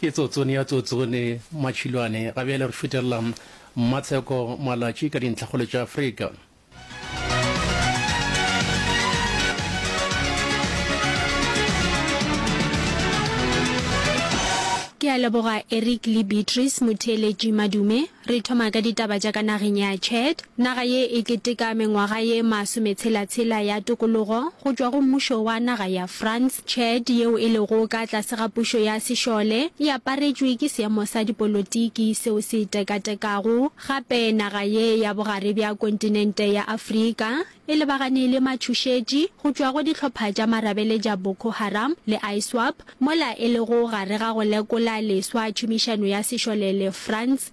Ke tsotsone ya tsotsone matšhilwane ga bjale re šutelela mmatsheko malatši ka dintlhakgolo tša afrika ke a leboga eric le beatrice motheeletši madume re thoma ka ditaba tša ka nageng ya chad naga ye e keteka mengwaga ye masometshela-tshela ya tokologo go tšwa go mmušo wa naga ya france Chad, yeo e lego ka tlase ga pušo ya sešole, e aparetšwe ke seemo sa dipolotiki seo se tekatekago. Gape naga ye ya bogare bja kontinente ya Afrika e lebagane le matšhošetši go tšwa go dihlopha tša marabele tša Boko Haram le ISWAP, mola e lego gare ga go lekola leswa tšhomišano ya sešole le France.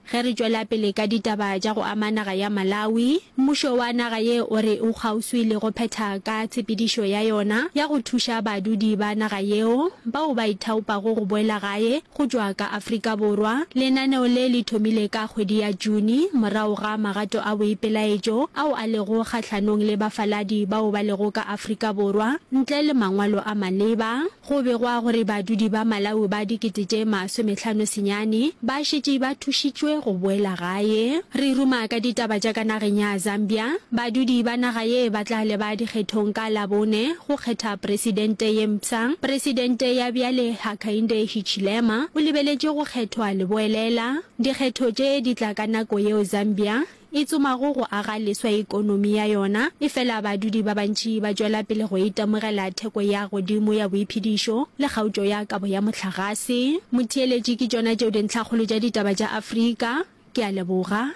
Ge re tšwela pele ka ditaba tša go ama naga ya Malawi, mmušo wa naga ye o re o kgauswi le go phetha ka tshepedišo ya yona ya go thuša badudi ba naga yeo bao ba ithaopago go boela gae go tšwa ka Afrika Borwa. Lenaneo le le thomile ka kgwedi ya June morago ga magato a boipelaetšo ao a lego kgahlanong le bafaladi bao ba lego ka Afrika Borwa ntle le mangwalo a maleba. Go begwa gore badudi ba Malawi ba dikete tše masomehlano senyane ba šetše ba thušitšwe go boela gae. Re ruma ka ditaba tša ka nageng ya Zambia. Badudi ba naga ye ba tla leba dikgethong ka Labone go kgetha presidente ye mpsha. Presidente ya bjale Hakainde Hichilema o lebeletše go kgethwa Leboelela. Dikgetho tše di tla ka nako yeo Zambia e tsomago go aga leswa ekonomi ya yona, efela badudi ba bantši ba tšwela pele go itemogela theko ya godimo ya boiphedišo le kgaotšo ya kabo ya mohlagase. Motheeletši, ke tšona tšeo dintlhakgolo tša ditaba tša Afrika. Ke a leboga.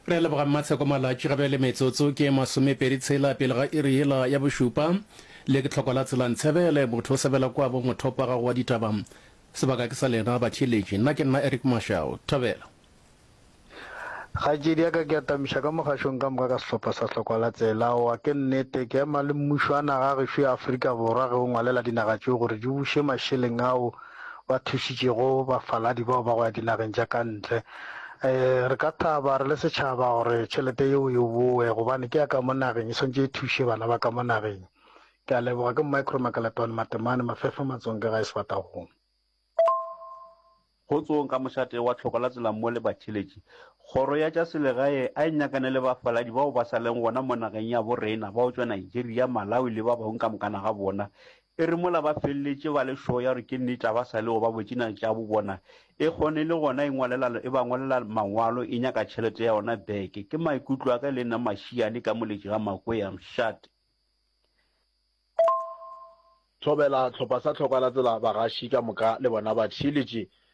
Re a leboga Mmatsheko Malatši ga bjale metsotso ke masomepedi tshela pele ga iri yela ya bošupa le ke tlhoko la tsela Ntshebele motho o sebela kwa bo mothopa gago wa ditaba sebaka ke sa lena batheeletši nna ke nna Eric Mashau Thobela. Kgaetšedi ya ka ke atamiša ka mogašong ka moka ka sehlopha sa hlokwa la tsela aowa ke nnete ke ema le mmušo wa naga ya gešo ya Afrika Borwa ge o ngwalela dinaga tšeo gore di buše mašeleng ao ba thušitšego bafaladi bao ba go ya dinageng tša ka ntle um re ka thaba re le setšhaba gore tšhelete yeo e boe gobane ke ya ka mo nageng e swantse e thuše bana ba ka mo nageng ke a leboga ke micro makalatwane matemane mafefa matsong ke ga e sefatagong Kgotsong ka mošate wa tlhoko la tsela mo le batheletši. Kgoro ya tša selegae a e nyakane le bafaladi bao ba sa leng gona mo nageng ya bo rena bao tšwa Nigeria, Malawi le ba bangwe ka mokana ga bona. E re mola ba feleletše ba le sure ya gore ke nnete ga ba sa le go ba botšinana tša bo bona, e kgone le gona e ngwalela, e ba ngwalela mangwalo e nyaka tšhelete ya yona back. Ke maikutlo a ka le nna mašiane ka moletši ga Makwea. Mshat. Thobela tlhopha sa tlhoka la tsela bagaši ka moka le bona ba theeletše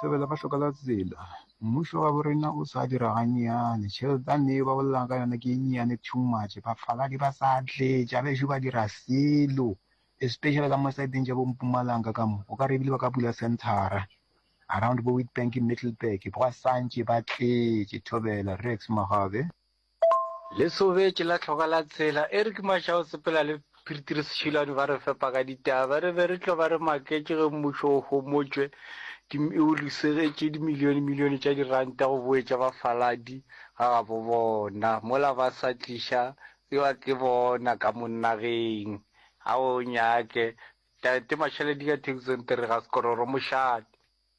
Thobela ba hloka la tsela. Mmušo wa bo rena o sa dira gannyane. Tšheletane yeo ba bolelago ka yona ke e nnyane too much. Bafaladi ba sa tletša bešo ba dira selo especially ka mo saeteng tša bo Mpumalanga ka mo. O ka re ebile ba ka bula centre-ra around bo Witbank, Middleburg gwa santše ba tletše. Thobela Rex Magabe. Lesobetše la Hloka la Tshela, Eric Mashau sepela le Phirtiri Seshilane ba re fepa ka ditaba. Ba re be re tlo ba re maketše ge mmušo o homotšwe ke o losegetše dimilionemilione tša diranta go boetša bafaladi ga gabo bona mola ba sa tliša ewa ke bona ka mo nageng. A o nyake Tate Mashaladiga Thekisonterega Sekororo Mošate.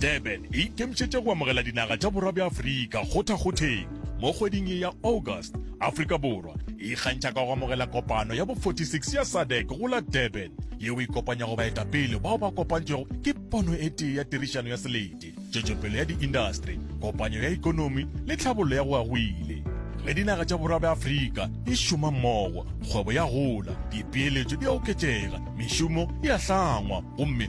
Durban e ikemišetše go amogela dinaga tša borwa bja Afrika kgothakgotheng mo kgweding ye ya August. Afrika Borwa e ikgantšha ka go amogela kopano ya bo 46 ya SADC go la Durban yeo e kopanyago baetapele bao ba kopantšwego ke pono e tee ya tirišano ya selete tšwetšopele ya diindastri kopanyo ya ikonomi le tlhabollo ya go agwile ge dinaga tša borwa bja afrika di šoma mmogo kgwebo ya gola dipeeletšo di a oketšega mešomo e a hlangwa gomme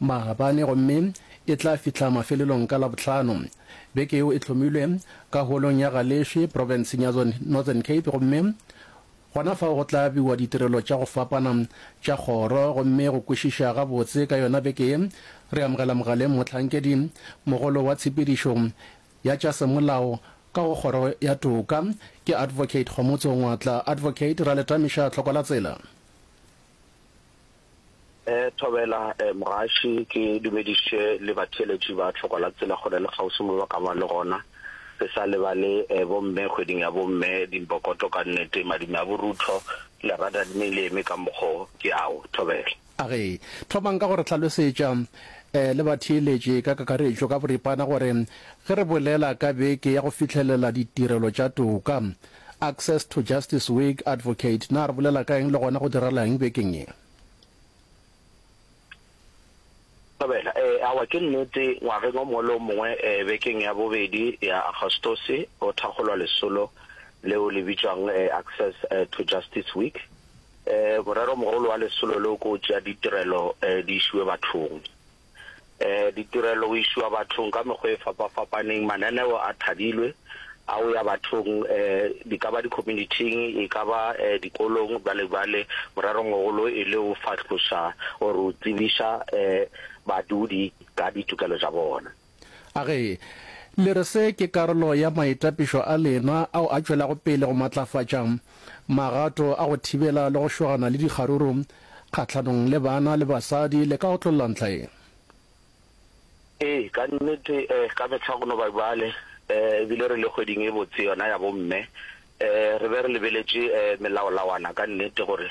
Maabane gomme e tla fihla mafelelong ka Labohlano. Beke yeo e hlomilwe ka Holong ya ga Leshwe profenseng ya Northern Cape gomme gona fao go tla abiwa ditirelo tša go fapana tša kgoro gomme go kwešiša gabotse ka yona beke ye re amogela mogaleng mohlankedi mogolo wa tshepedišo ya tša semolao ka go kgoro ya toka ke Advocate Kgomotso Ngwatla Advocate Raletamiša Tlhokwalatsela Thobela Mogaši, ke dumediše le batheeletši ba Tlhoko la Tsela kgole le kgauswi mo ba ka ba le gona. Re sa lebale bomme kgweding ya bomme, Dimbokoto ka nnete, madume a borutho, lerata le meleme ka mokgo ke ao. Thobela. A re, thomang ka go re hlalosetša le batheeletši ka kakaretšo ka boripana gore ge re bolela ka beke ya go fihlelela ditirelo tša toka, Access to Justice Week, Advocate, Na re bolela ka eng le gona go direla eng bekeng ye? Thobela, E, awa ke nnete, ngwageng o mongwe le o mongwe bekeng ya bobedi ya Agostose go thakgolwa lesolo leo le bitšwago Access to Justice Week. Moreromogolo wa lesolo leo ke go tšea ditirelo di išiwe bathong. um ditirelo go išiwa bathong ka mekgwa e fapa-fapaneng, mananeo a thadilwe a go ya bathong um di ka ba di-community-ing, e ka ba um dikolong, bjale bjale morerongmogolo e le go fahloša or go tsebiša um badudi ka ditokelo tša bona. A re, Le re se ke karolo ya maitapišo a lena ao a tšwelago pele go matlafatša Magato a go thibela le go šogana le dikgaruru kgahlanong le bana le basadi le ka otlolla ntlha e? Ee, ka nnete ka mehla go no ba bjale e bile re le kgweding e botse yona ya bomme re be re lebeletše melaolawana ka nnete gore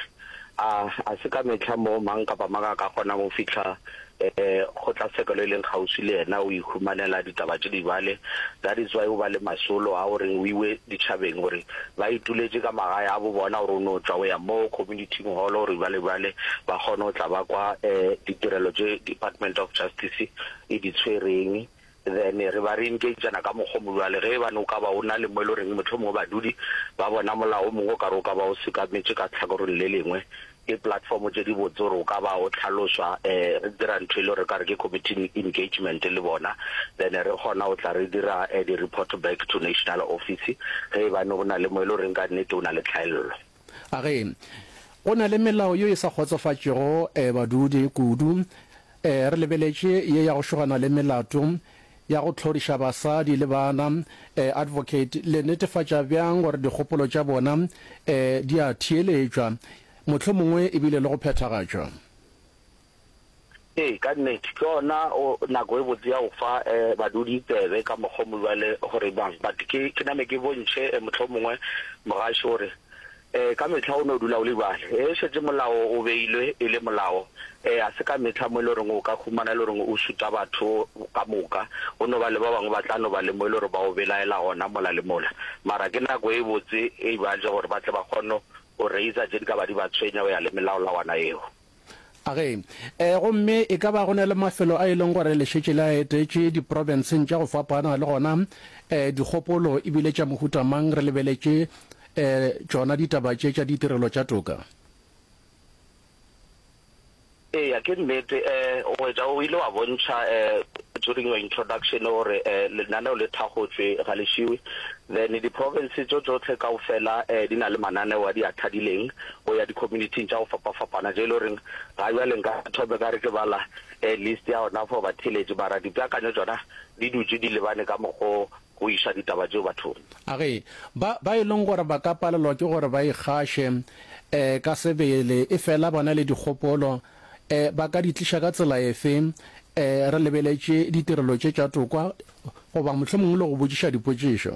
a se ka mehla moo mang kapa mang a ka kgonago go fihla Kgotlatshekelo e leng kgauswi le yena o ihumanela ditaba tše di bale, that is why o ba le masolo a gore o iwe ditšhabeng gore ba ituletše ka magae a bo bona gore o no tšwa o ya mo community-ing hall gore ba le bale ba kgone go tla ba kwa ditirelo tše Department of Justice e di tshwereng. Then re ba re engagana ka mokgwa o mongwe, bjale ge e bane o ka ba o na le mo e le goreng mohlomongwe badudi ba bona molao o mongwe o ka re o ka ba o sekametše ka tlhakoreng le lengwe, ke platform tše di botse gore o ka ba o hlalošwa, um re dira ntho e le gore re ka re ke committee engagement le bona, then re kgona go tla re dira di-report back to national office ge e bane go na le mo e le goreng ka nnete o na le tlhaello. A re go na le melao yo e sa kgotsofatšego eh, badudi kudu eh, re lebeletše ye ya go šogana le melato ya go tlhoriša basadi le bana eh, advocate le netefatša bjang gore dikgopolo tša bona eh, di a theeletšwa mohlomongwe ebile le go phethagatšwa. Ee, ka nnete, ke yona o, nako e botse ya go fa e, badudi tsebe ka mokgwa o mo bjale gore bang. But ke, ke name ke bontšhe e, mohlomongwe mogaši gore e, ka mehla o no dula o libale e šetše molao o beilwe e le molao e, ga se ka mehla mo e le goreng o ka humana e le goreng o šuta batho ka moka. Go no ba le ba bangwe ba tla no ba le mo e le gore ba o belaela gona mola le mola. Mara ke nako e botse eibale gore ba tle ba kgone go raiser tše di ka ba di ba tshwenya go ya le melaolawana yeo. Age. E, gomme e ka ba go na le mafelo a e leng gore le šetše le a etetše diprobenseng tša go fapana, le gona e, dikgopolo e bile tša mohuta mang re lebeletše e, tšona ditaba tše tša ditirelo tša toka? Eya, ke nnete. E, o hwetša o ile wa bontšha e, during your introduction gore e, lenaneo le thakgotšwe ga le šiwe. Then diprovense tšo tšohle kaofela e, di na le mananeo a di a thadileng, go ya di-community-ing tša go fapafapana tše e le goreng ga bjale nka thome ka re ke bala um list ya gona for batheeletše mara dipeakanyo tšona di dutše di lebane ka mokgo go iša ditaba tšeo bathong. A ge ba ba e leng gore ba ka palelwa ke gore ba ikgaše um ka sebele e fela ba na le dikgopolo um ba ka di tliša ka tsela efe um re lebeletše ditirelo tše tša tokwa goba mohlomongwe le go botšiša dipotšišo?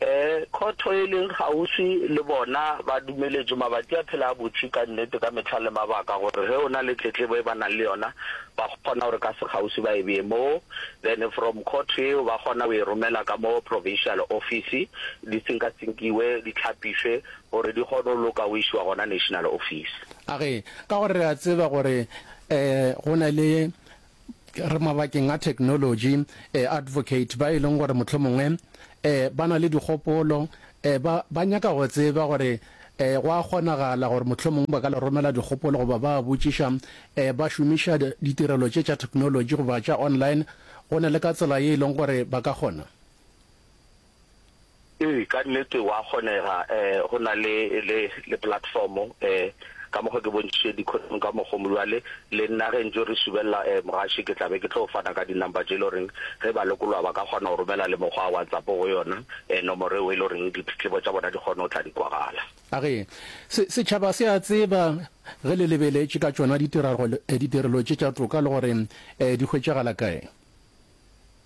E, khotho e leng kgauswi le bona ba dumeletšwe mabati a phela a butše ka nnete ka mehla le mabaka gore ge o na le tletlebo e ba nang le yona ba kgona gore ka sekgauswi ba e bee moo then from khotho yeo ba kgona go e romela ka moo provincial office di tsinkatsingkiwe di tlhapišwe gore di kgone go loka go išiwa gona national office. A re, Ka gore re a tseba gore e, go na le re mabakeng a technology eh, advocate ba e leng gore mohlomongwe eh, ba na le dikgopolo eh, ba, ba nyaka go tseba gore eh, go a kgonagala gore mohlomongwe ba ka le romela dikgopolo goba ba botšiša eh, ba šomiša ditirelo tše tša technology goba tša online go ne le ka tsela ye e leng gore ba ka kgona Ee, ka nnete wa kgonega eh, go na le, le, le platformo eh, ka mokgwa ke bontšitše dikhothong ka mokgomo. Bjale le nna ge ntšo re subelela eh, mogaši, ke tla be ke tlo fana ka dinumber tše e le goreng ge balokoloa ba ka kgona go romela le mokgwa wa WhatsApp go yona eh, nomoro eo e le goreng ditletlebo tša bona di kgone go tla di kwagala. A re, Se, setšhaba se a tseba ge le lebeletše ka tšona ditiragalo, eh, ditirelo tše tša toka le gore eh, di hwetšagala kae.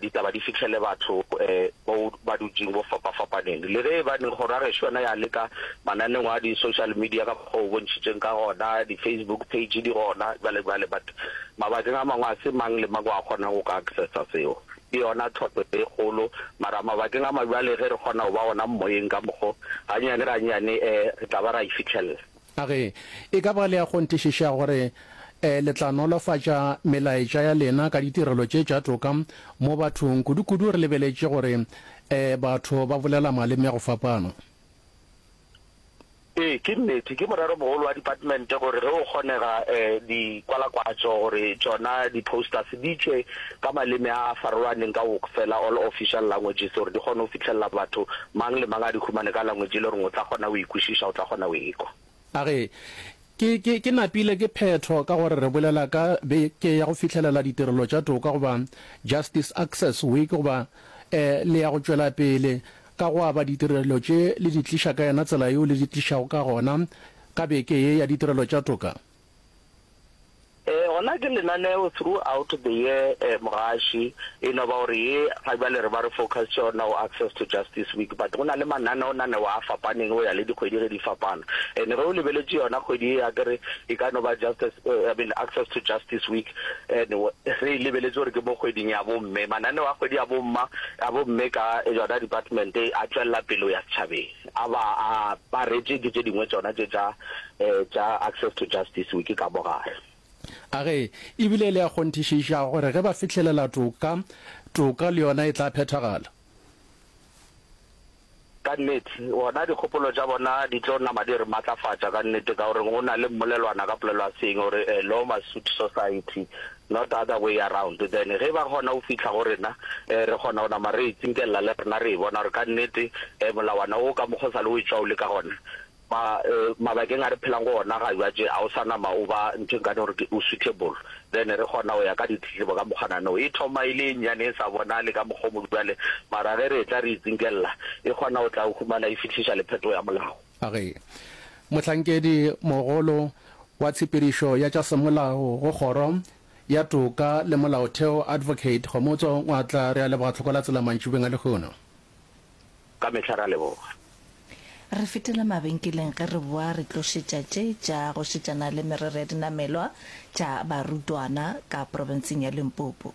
ditaba di fihlele batho bao ba dutšeng bo fapafapaneng. Le ge e baneng kgoro ya gešo yona ya leka mananeong a di-social media ka mokgwa o bontšhitšeng ka gona, di-Facebook page di gona bjale bjale, but mabakeng a mangwe ga se mang le mang o a kgonang go ka accessa seo. Ke yona tlhohlo e kgolo, mara mabakeng a mangwe bjale ge re kgona go ba gona moyeng ka mokgwa o, gannyane gannyane re tla ba ra e fihlella. A re, E ka ba le a kgonthišiša gore le tla nolofatša melaetša ya lena ka ditirelo tše tša toka mo bathong, kudukudu re lebeletše gore batho ba bolela maleme a go fapana? Ee, ke nnete. Ke moreromogolo wa Department gore ge go kgonega dikwalakwatšo gore tšona di-posters di tšwe ka maleme a a farologaneng ka wkfela, all official languages, gore di kgone go fitlhelela batho, mang le mang a di humane ka language e le goreng o tla kgona go e kwešiša, o tla kgona go e ekwa. A re, Ke, ke, ke napile ke phetho ka gore re bolela ka be ke ya go fihlelela ditirelo tša toka goba Justice Access Week goba e le ya go tšwela pele ka go aba ditirelo tše le di tliša ka yena tsela yeo le di tlišago ka gona ka beke ye ya ditirelo tša toka. Ee, gona ke lenaneo through out the year um mogaši, e no ba gore ye ga bjale re ba re focusitše gona go Access to Justice Week, but go na le mananeonaneo a fapaneng go ya le dikgwedi ge di fapana. And ge o lebeletše yona kgwedi ye akere e ka no ba just as I mean Access to Justice Week and re e lebeletše gore ke mo kgweding ya bomme, mananeo a kgwedi ya bomma, ya bomme ka yona department a tšwella pele go ya setšhabeng. A ba a aparetše ke tše dingwe tšona tše tša tša Access to Justice Week ka mo gare. A re e bile e le ya kgonthišiša gore ge ba fihlelela toka, toka le yona e tla phethagala. Ka nnete, gona dikgopolo tša bona di tlo nama di re matlafatša ka nnete ka gore go na le mmolelwana ka polelo ya Seeng o re, A law must suit society. not other way around, then ge ba kgona go fihla go rena um re kgona go nama re e tsinkelela le rena re e bona gore ka nnete um molawana wo ka mokgwa o sa le o etšwa o le ka gona ma um mabakeng a re phelang go ona ga jwatše a o sa nama o ba ntho e nkane gore o suitable then re kgona go ya ka ditletlebo ka mokgwanano e thoma e le e nnyane e sa bonale ka mokgwa o mo bjale mara ge re e tla re e tsinkelela e kgona go tla o humana e fihliša le phetogo ya molao. Ge mohlankedi mogolo wa tshepedišo ya tša semolao go Kgoro ya Toka le Molaotheo Advocate Kgomotso Ngwatla re a leboga tlhoko la tsela mantšibeng a lehono. Ka mehla re a leboga. Re fetela mabenkeleng ge re boa re tlo šetša tše tša go šetšana le merero ya dinamelwa tša barutwana ka profenseng ya Limpopo.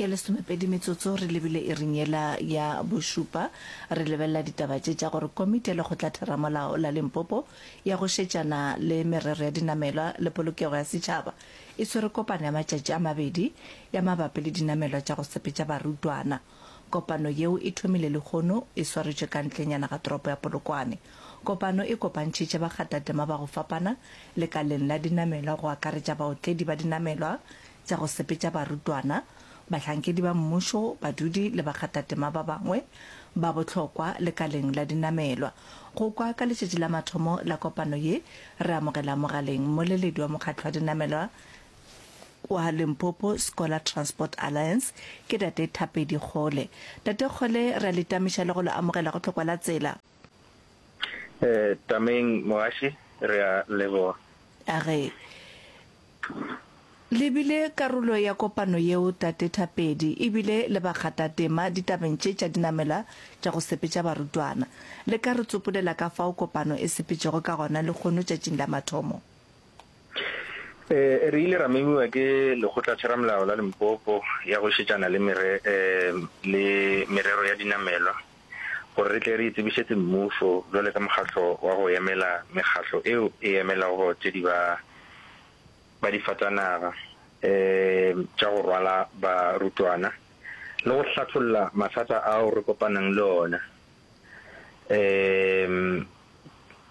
ke lesomepedi metsotso re lebile e rinyela ya bošupa re lebelela ditaba tše tša gore komiti ya lekgotlatheramolao la limpopo ya go šetšana le merero ya dinamelwa le polokego ya setšhaba e swere kopano ya matšatši a mabedi ya mabapi le dinamelwa tša go sepetša barutwana Kopano yeo e thomile lehono e swaretšwe ka ntlenyana ga toropo ya Polokwane. Kopano e kopantšhitše bakgathatema ba go fapana lekaleng la dinamelwa go akaretša baotledi ba dinamelwa tša go sepetša barutwana, bahlankedi ba mmušo, badudi le bakgathatema ba bangwe ba bohlokwa lekaleng la dinamelwa. Go kwa ka letšatši la mathomo la kopano ye, re amogela mogaleng mmoleledi wa mokgatlo wa dinamelwa Wa Limpopo Scholar Transport Alliance ke Tate Thapedi Kgole. Tate Kgole, re a le tamiša le go le amogela go Tlhokwa la Tsela. Tameng Mogaši, re a leboga. A re le bile karolo ya kopano yeo, Tate Thapedi, e bile le bakgathatema ditabeng tše tša dinamela tša go sepetša barutwana. Le ka re tsopolela ka fao kopano e sepetšego ka gona lehono tšatšing la mathomo? Ee, re ile ra memiwa ke Lekgotlatheramolao la Limpopo ya go Šetšana le Mere, um, le Merero ya Dinamelwa gore re tle re e tsebišetse mmušo bjale ka mokgatlo wa go emela mekgatlo eo e emelago tše di ba, ba difatanaga um tša go rwala barutwana le go hlatholla mathata ao re kopanang le ona. Eemm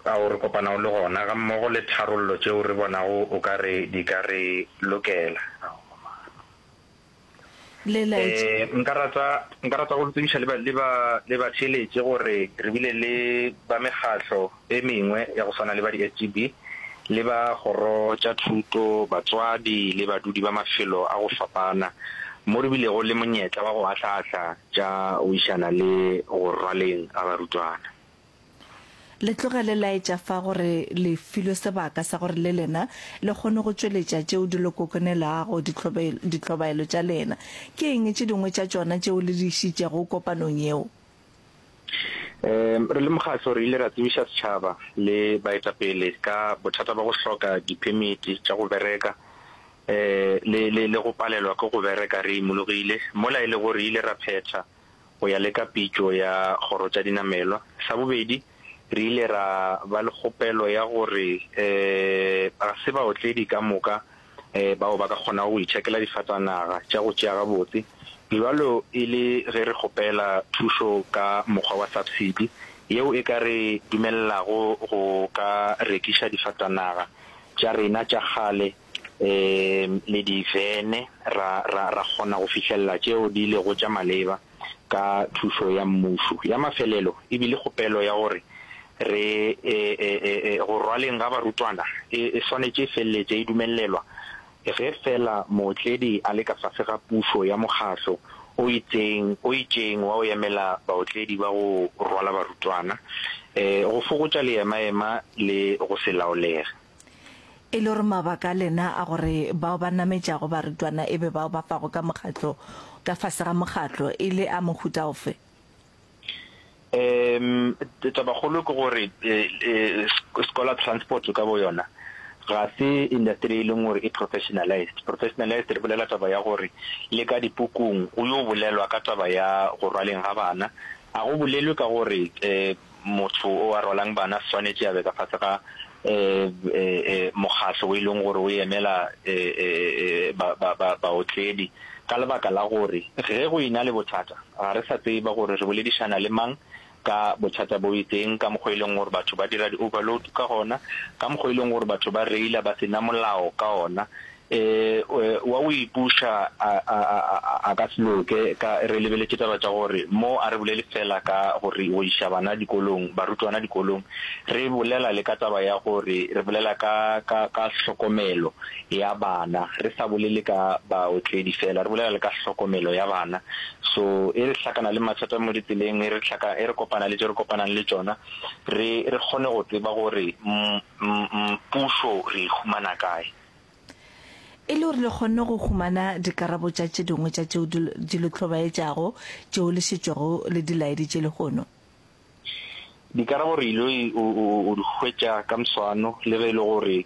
ao re kopanago le gona gammogo le tharollo tšeo re bonago o ka re di ka re lokela. Eemm nka rata nka rata go le tsebiša le ba le ba le batheeletše gore re bile le ba mekgatlo. e mengwe ya go swana le ba di-SGB le ba kgoro tša thuto, batswadi le badudi ba mafelo a go fapana mo re bilego le monyetla wa go ahla-ahla tša wišana le go rwaleng ga barutwana. Le tloga le laetša fa gore le filwe sebaka sa gore le lena le kgone go tšweletša tšeo di le kokonelago dihlobaelo tša lena. Ke eng tše dingwe tša tšona tšeo le di išitšego kopanong yeo? Um re le mokgatlo re ile ra tsebiša setšhaba le baetapele ka bothata ba go hloka diphemiti tša go bereka um le le le go palelwa ke go bereka re imologile mola e lego re ile ra phetha go ya le ka pitšo ya kgoro tša dinamelwa. Sa bobedi, re ile ra ba le kgopelo ya gore um ga se baotledi ka moka bao ba ka kgonago go itšhakela difatanaga tša go tšea gabotse, bjalo e le ge re kgopela thušo ka mokgwa wa subsidy yeo e ka re dumelelago go ka rekiša difatanaga tša rena tša kgale le divene ra kgona go fihlelela tšeo di lego tša maleba. ka thušo ya Mmušo. Ya mafelelo e bile kgopelo ya gore re e-e-e-e go rwaleng ga barutwana e e swanetše e feleletše e dumelelwa ge feela mootledi a le ka fase ga pušo ya mokgatlo o itseng o itšeng wa go emela baotledi ba go rwala barutwana, e, go fokotša leemaema le go se laolege. E le gore mabaka a lena a gore bao ba nametšago barutwana e be bao ba fago ka mokgatlo ka fase ga mokgatlo e le a mohuta ofe? Um tabakgolo ke gore um scholar transport ka bo yona ga se industry e leng gore e professionalized. Professionalized re bolela taba ya gore le ka dipukung go yo bolelwa ka taba ya go rwaleng ga bana, ga go bolelwe ka gore um Motho o a rwalang bana swanetše a be ka fase ga mokgatlo o e leng gore o emela baotledi ka lebaka la gore ge go ena le bothata ga re sa tseba gore re boledišana le mang ka bothata bo itseng, ka mokgwa o e leng gore batho ba dira di-overload ka gona, ka mokgwa o e leng gore batho ba reila ba se na molao ka ona E, e, wa o ipuša, a, a, a, a, a, a ka se loke, ka, re lebeletše taba tša gore, mo a re bolele feela ka gore o iša bana dikolong, barutwana dikolong, re bolela le ka taba ya gore re bolela ka, ka, ka hlokomelo ya bana, re sa bolele ka baotledi feela, re bolela le ka hlokomelo ya bana. So, e re hlakana le mathata mo ditseleng, e re hlaka, e re kopana le tše re kopanang le tšona, re, re kgone go tseba gore, m, m, m, pušo re e humana kae. E le gore le kgonne go humana dikarabo tša tše dingwe tša tšeo di le hlobaetšago tšeo le šetšego le di laeditše lehono. Dikarabo re il'o di hwetša ka mswano le ge e le gore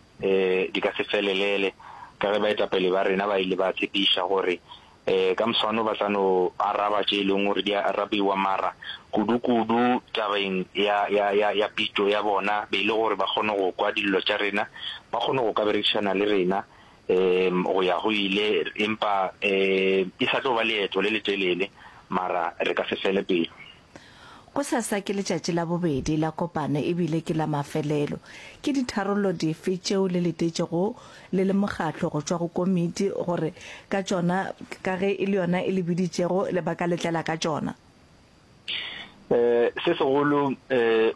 di ka se felelele ka ge baetapele ba rena ba ile ba tšepiša gore Ee, ka moswane ba tla no araba tše e lego gore di a arabiwa, mara kudukudu tabeng ya, ya, ya, ya pitšo ya bona, be e le gore ba kgone go kwa dillo tša rena, ba kgone go ka berekišana le rena um go ya go ile. Empa um e sa tlo ba leeto le letelele, mara re ka se fele pelo. Gosasa ke letšatši la bobedi la kopano e bile ke la mafelelo. Ke ditharollo dife tšeo le letetšego le le mokgatlo go tšwa go komiti gore ka tšona ka ge e le yona e le biditšego le ba ka letlela ka tšona? Se segolo,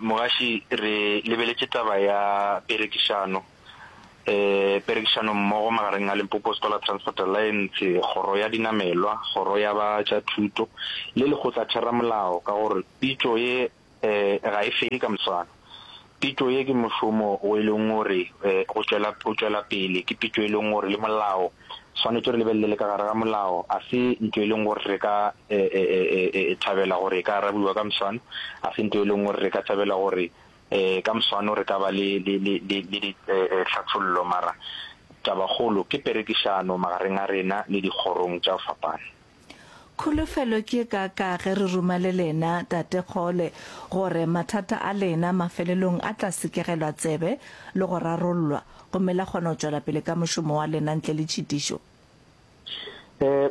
Mogaši, re lebeletše taba ya perekišano. um perekišanommogo magareng a Limpopo Scholar Transport Alliance, kgoro ya dinamelwa, kgoro ya ba tša thuto le lekgotlatheramolao ka gore pitšo ye um ga e fele ka moswane. Pitšo ye ke mošomo o e leng gore um go tšwela pele ke pitšo e leng gore le molao swanetše re lebelele le ka gare ga molao a se ntho e leng gore re ka um thabela gore e ka arabiwa ka moswane, a se ntho e leng gore re ka thabela gore E, ka moswano re ka ba le, le, le, le, le di, e, e, tlhathollo, mara tabakgolo ke perekišano magareng a rena le dikgorong tša go fapana. Kholofelo ke ye kaaka ge re ruma le lena, Tate Kgole, gore mathata a lena mafelelong a tla sekegelwa tsebe le go rarollwa, gomme la kgona go tšwela pele ka mošomo wa lena ntle le tšhitišo.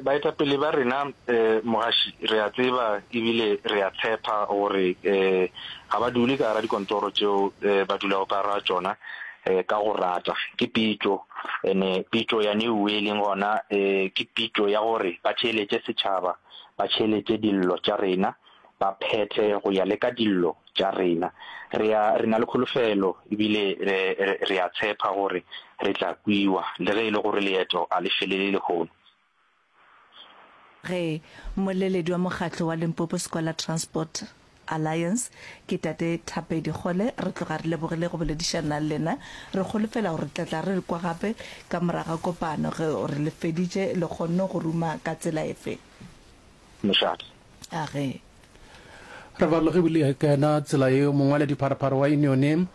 Baetapele ba rena mogaši re a tseba ebile re a tshepa gore ga ba dule ka gara dikontoro tšeo ba dulago ka gara tšona ka go rata. Ke pitšo and-e pitšo ya New e leng gona ke pitšo ya gore ba theeletše setšhaba, ba theeletše dillo tša rena. ba phethe go ya le ka dillo tša rena. Re a, re na le kholofelo ebile re, re, re a tshepa gore re tla kwiwa, le ge e le gore leeto a le felele lehono. Ge mmoleledi wa mokgatlo wa Limpopo Scholar Transport Alliance, ke Tate Thapedi Kgole, re tloga re lebogile go boledišana le lena. Re kholofela gore re tla tla re le kwa gape ka morago ga kopano. Ge o re le feditše, le kgonne go ruma ka tsela efe? Mošate. A re. Re farologile ka yona tsela yeo mongwaladipharopharo wa Unione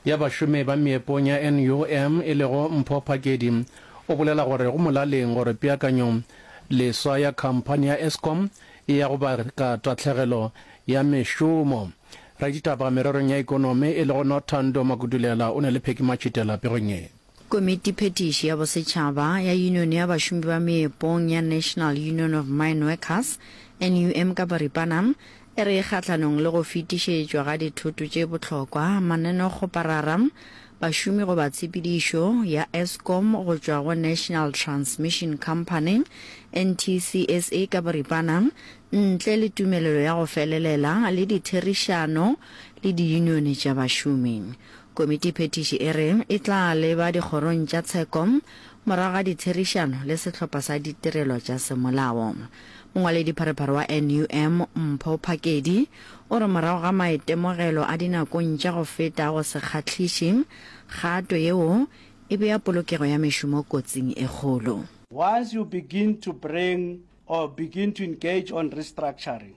ya Bašomi ba Meepong ya NUM e lego Mpho Phakedi o bolela gore go molaleng gore peakanyo leswa ya khamphani ya Eskom e ya go baka tahlegelo ya mešomo. Raditaba mererong ya ikonomi e lego Nothando Makudulela o na le Pheki Matšhitela pegong ye. Komitiphethiši ya Bosetšhaba ya Yunione ya Bašomi ba Meepong ya National Union of Mine Workers, NUM ka boripana, e re kgahlanong le go fetišetšwa ga dithoto tše bohlokwa mananeo-kgoparara, bašomi go ba tshepedišo ya Eskom go tšwa go National Transmission Company, NTCSA ka boripana, ntle le tumelelo ya go felelela le ditherišano le diyunione tša bašomi. Komitiphethiši e re e tla leba dikgorong tša tsheko morago ga ditherišano le sehlopha sa ditirelo tša semolao. Mongwaledipharephare wa NUM, Mpho Phakedi, o re morago ga maitemogelo a dinakong tša go feta a go se kgahliše, kgato yeo e bea polokego ya mešomo kotsing e kgolo. Once you begin to bring or begin to engage on restructuring,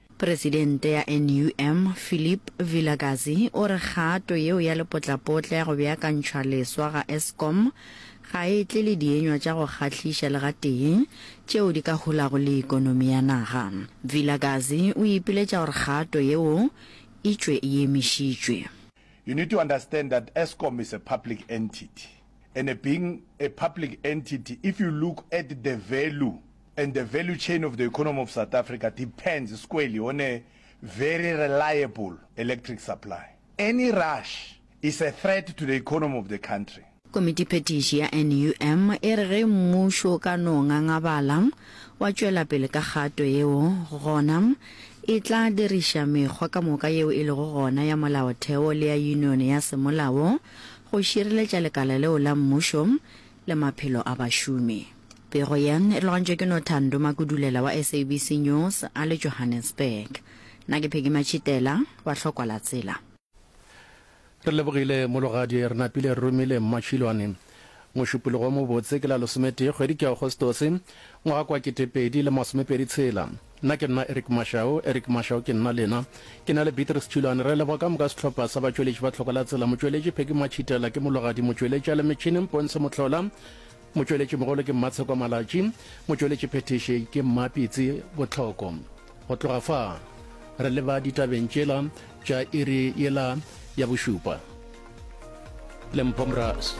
Presidente ya NUM, Philip Vilakazi, o re kgato yeo ya lepotlapotla ya go beakantšhwa leswa ga Eskom ga e tle le dienywa tša go kgahliša le gatee tšeo di ka hulago le ekonomi ya naga. Vilakazi o ipiletša gore kgato yeo e tšwe e emišitšwe. You need to understand that Eskom is a public entity and being a public entity if you look at the value And the value chain of the economy of South Africa depends squarely on a very reliable electric supply. Any rush is a threat to the economy of the country. Komitiphethiši ya NUM e re ge mmušo o ka no ngangabala wa tšwela pele ka kgato yeo, gona e tla diriša mekgwa ka moka yeo e lego gona ya molaotheo le ya yunione ya semolao go šireletša lekala leo la mmušo le maphelo a bašomi. Pego yeng e logantšwe ke no Thando Makudulela wa SABC News a le Johannesburg. Na ke Peggy Matšhitela wa Hlokwa la Tsela. Re lebogile mologadi, re napile re romile Mmatšhilwane. Mošupologo wo mobotse ke la losometee kgwedi ke Agostose, ngwaga kwa ketepedi le masomepedi tshela. Nna ke nna Eric Mashau, Eric Mashau ke nna lena. Ke na le Beatrice Tšhilwane. Re leboga ka moka sehlopha sa batšweletši ba Tlhokwa la Tsela, motšweletši Peggy Matšhitela, ke mologadi motšweletši a le metšhineng Pontsho Mohlola, Motšweletšimogolo ke Mmatshekwa Malatši, motšweletšiphethiši ke Mmapitsi Botlhoko. Go tloga fa, re leba ditabeng tšela tša iri yela ya bošupa. Lempho Mraz.